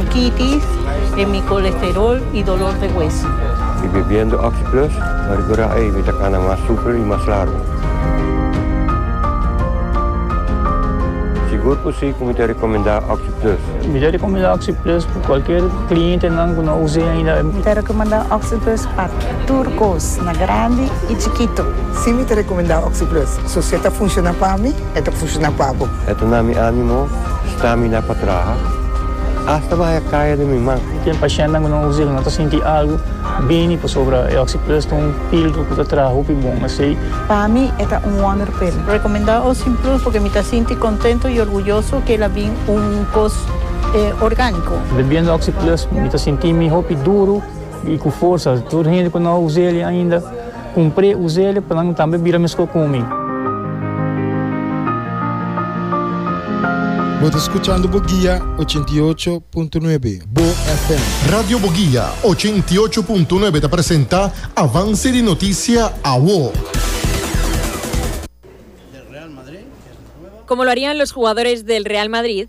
Diabetis, e mi colesterol y dolor de hueso. Y bebiendo Oxi Plus, pa riba ra ey mi ta cana mas super y mas largo. Sigur cu si cu mi ta recomenda Oxi Plus. Mi ta recomenda Oxi Plus pa cualkier clientenan cu no a us'e ainda. Mi ta recomenda Oxi Plus pa tur cos, na grandi y chikito. Si mi ta recomenda Oxi Plus, so si e ta funciona pa mi, e ta funciona pa bo. E ta na mi animo, stami na pa traha, asta bahaya kaya den mi man. Ken pashentnan ku no usa el no ta sinti algu bini pasobra e Oxi Plus ta un pildra ku ta traha hopi bon asei. Pa mi e ta un wonder pa el. Rekomendá Oxi Plus porque mi ta sinti kontento i orguyoso ku el a bin un kos orgániko. Bebiendo Oxi Plus mi ta sinti mi hopi duru i ku forsa. Tur hende ku no a usa el ainda. Cumpré uséle pa nan tambe bira mesco cu mi. Bo ta scuchando Boguia ochenta i ocho punto nuebe, Bo FM. Radio Boguia ochenta i ocho punto nuebe ta presenta Avance di Noticia Awo. Como lo harían los jugadores del Real Madrid?